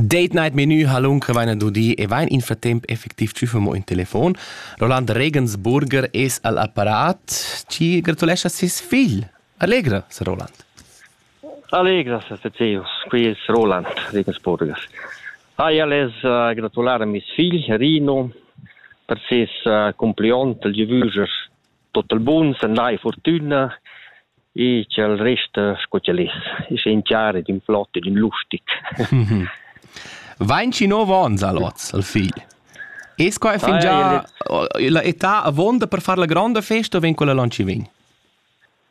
Date Night Menü halun crevain dudi e vain in fratemp effectiv tschüfemo in telefon. Roland Regensburger es al apparat. Ci gratulescha ses figl. Allegra, Sir Roland. Allegra, Sir Tezeus. Qui es Roland Regensburger. Ai ales uh, gratulare mes figl Rino per ses uh, compliont Lieu Vüger Tot il bun s'andai fortüna e cha'l resta sco ch'el es, esa in char ed in flot ed in lustig. Vainci nov ons al hoz al figl. Es quai fingià la età avuonda per far la gronda festa o vegn quella lon chi vegn?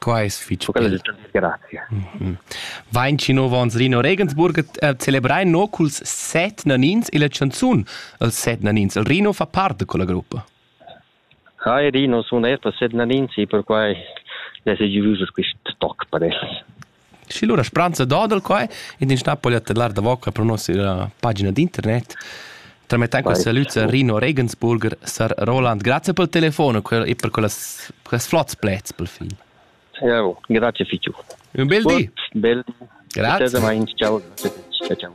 Quai es fich bel. Vain chi nouv ons Rino Regensburg eh, celebrar no culs set nanins illa chanzun. Els set nanins. Il Rino fa part da quella gruppa. Hi Rino, sun eir per set nanins e perquai es es giovus quist toc per els. Schi lura spranza dodel quai ed ins na po tellar davoca pro nossa pagina d'internet. Tramettend questa lüza Rino Regensburger, sar Roland, grazie pel telefono e per quellas, quels flots plets pel fin. Ciao, grazie fichu. Un bel di. Bel di. Grazie. Ciao, grazie. Ciao, ciao.